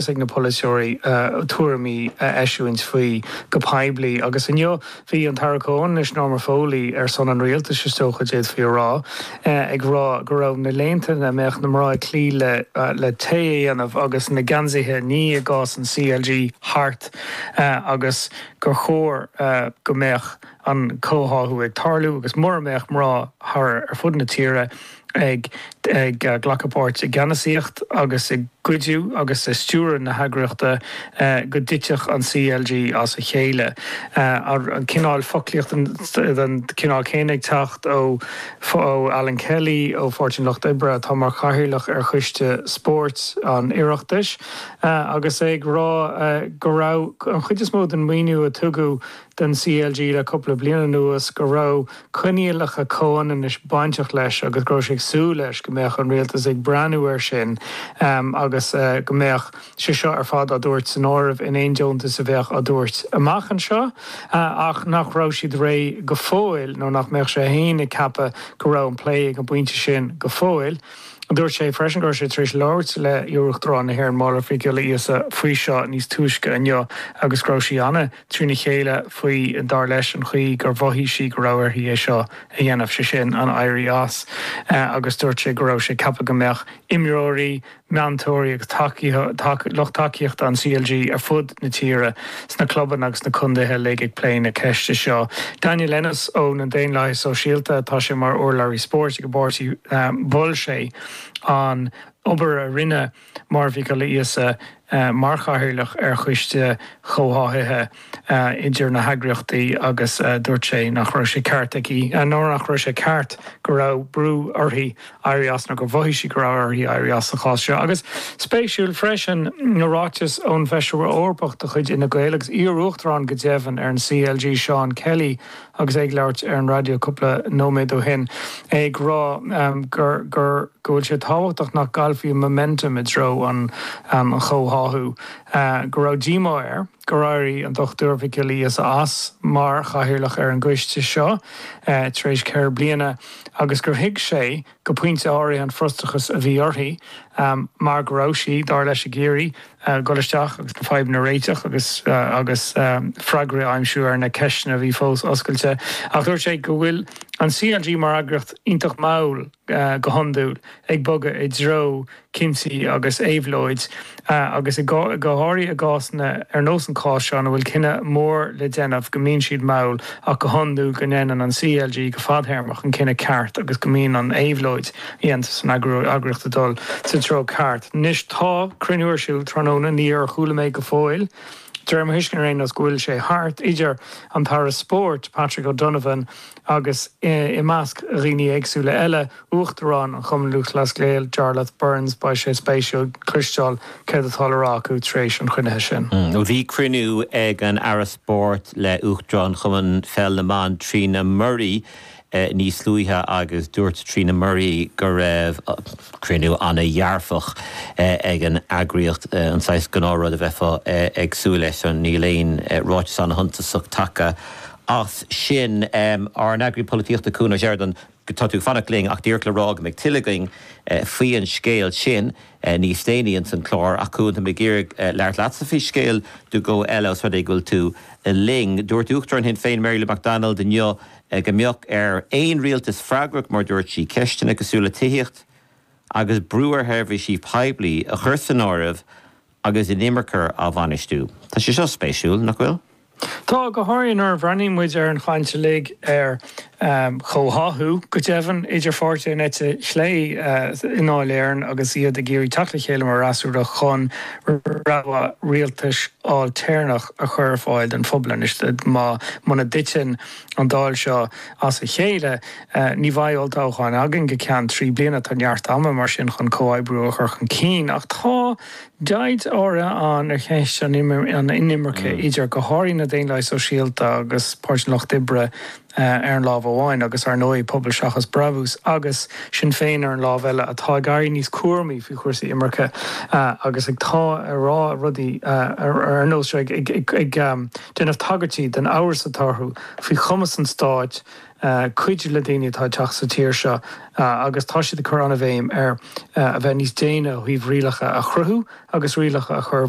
Is ag na polaiteoirí tuairimí a eisiúint faoi go poiblí, agus inniu bhí an tAire Comhionannais, Norma Foley, ar son an rialtais, is dócha, d'fhéadfaí a rá, ag rá go raibh na laethanta ina mbeadh na mná ag cloí le tae a dhéanamh agus na geansaithe a ní i gcás an CLG, thart agus gur chóir go mbeadh. an comhtháthú ag tarlú agus mura mbeadh mná thart ar fud na tíre ag glacadh páirt i gceannasaíocht agus i gcuidiú agus i stiúradh na heagraíochta go dtitfeadh an CLG as a chéile. An cineál foclaíochta den chineál céanna ag teacht ó Alan Kelly ó Pháirtí an Lucht Oibre atá mar chathaoirleach ar choiste spóirt an Oireachtais agus é ag rá go raibh an chuid is mó den mhaoiniú a tugadh don CLG le cúpla bliain anuas go raibh coinníollacha comhionannais bainteach leis agus go raibh sé ag súil leis go mbeadh an Rialtas ag breathnú air sin agus go mbeadh sé seo ar fad á thabhairt san áireamh in aon deontas a bheadh á thabhairt amach anseo ach nach raibh siad réidh go fóill nó nach mbeadh sé féin ag ceapadh go raibh an plé ag an bpointe sin go fóill. Dúirt sé freisin go raibh sé tar éis labhairt le hIar-Uachtarán na hÉireann Máire Mhic Ghiolla Íosa faoi seo níos túisce inniu agus go raibh sí trína chéile faoi, dar leis, an chaoi gur mhothaigh sí go raibh uirthi é seo a dhéanamh, sé sin, an éirí as, agus dúirt sé go raibh sé ag ceapadh go mbeadh imreoirí, meantóirí agus lucht tacaíochta an CLG ar fud na tíre, sna clubanna agus sna contaetha uilig, ag plé na ceiste seo. Daniel Ennis ó na Daonlathaithe Sóisialta, tá sé mar urlabhraí spóirt ag an bpáirtí, mhol sé an obair a rinneadh, Máire Mhic Giolla Íosa mar chathaoirleach ar choiste comhtháthaithe idir na heagraíochtaí agus dúirt sé nach raibh sé ceart aici, nó nach raibh sé ceart go raibh brú uirthi éirí as nó gur mhothaigh sí go raibh uirthi éirí as sa chás seo. Agus spéisiúil freisin ná ráiteas ón bhFeisire Eorpach de chuid Fhine Gael, agus iar-uachtarán go deimhin ar an CLG, Seán Kelly, agus é ag labhairt ar an raidió cúpla nóiméad ó shin, é ag rá gur gur go bhfuil sé tábhachtach nach gcaillfí an momentum i dtreo an an chomhtháthú, go raibh díomá air gur éirigh an Dr Mhic Giolla Íosa as mar chathaoirleach ar an gcoiste seo tar éis ceithre bliana agus gur thuig sé go pointe áirithe, an frustrachas a bhí uirthi mar go raibh sí, dar leis, ag iarraidh dul isteach agus na fadhbanna a réiteach agus freagraí a aimsiú ar na ceisteanna a bhí fós oscailte. Ach dúirt sé go bhfuil an CLG mar eagraíocht iontach mall go hiondúil ag bogadh i dtreo coimeádach agus éabhlóid, agus go háirithe i gcásanna ar nós an cháis seo ina bhfuil cinneadh mór le déanamh, go mbíonn siad mall ach go hiondúil go ndéanann an CLG go fadthéarmach an cinneadh ceart agus go mbíonn an éabhlóid a dhéantar san eagraíocht ag dul sa treo ceart. Anois tá cruinniú ar siúl tráthnóna, níor chuala mé go fóill, de réir mo thuiscint ar aon nós, go bhfuil sé thart, idir an tAire Spóirt, Patrick O'Donovan, agus i measc dhaoine éagsúla eile, uachtarán an Chumainn Lúthchleas Gael, Jarlath Burns, beidh sé spéisiúil cloisteáil céard atá le rá acu tar éis an chruinnithe sin. Bhí cruinniú ag an Aire Spóirt le Uachtarán Chumann Pheil na mBan, Trina Murray, níos luaithe agus dúirt Trina Murray go raibh cruinniú an-dhearfach ag an eagraíocht, an saghas gnáthrud a bheifeá ag súil leis. Níl aon ráiteas an-shuntasach tagtha. as sin ár n-eagraí polaitíochta Cuan Ó Seireadáin, Tá tú ag fanacht linn ach díreach le rá go mbeidh tuilleadh againn faoi an scéal sin níos déanaí ins an chlár. Ach Cuan, tá mé ag iarraidh labhairt leatsa faoi scéal nó dhó eile os rud é go bhfuil tú linn. Dúirt Uachtarán Shinn Féin Mary Lou McDonald inniu go mbeadh ar aon rialtas freagrach mar a dúirt sí ceisteanna cosúil le tithíocht agus brú ar sheirbhísí poiblí a chur san áireamh agus inimirce á bhainistiú. Tá sé seo spéisiúil, nach bhfuil? Tá, go háirithe nuair a bhreathnaíonn muid ar an chaint uilig ar chomhtháthú, go deimhin, idir pháirtithe an eite chlé i nDáil Éireann agus iad ag iarraidh teacht le chéile mar fhreasúra chun rogha rialtais ailtéarnach a chur ar fáil don phobal. Anois, má, muna dtiteann an Dáil seo as a chéile, Ní bheidh olltoghchán againn go ceann trí bliana. Tá neart ama, mar sin, chun comhoibriú a chur chun cinn. Ach tá deighilt áirithe ann ar cheist an inimirce idir, go háirithe, na Daonlathaigh Sóisialta agus Páirtí an Lucht Oibre ar an lámh amháin agus, ar ndóigh, Pobal Seachas Brabús agus Sinn Féin ar an lámh eile, atá ag éirí níos cúramaí faoi chúrsaí imirce agus ag, tá, ag rá rudaí ar nós seo, ag déanamh tagairtí don amhras atá orthu faoi chumas an stáit. cuidiú le daoine atá ag teacht sa tír seo agus tá siad ag cur an-bhéim ar a bheith níos déine ó thaobh rialacha a chruthú agus rialacha a chur i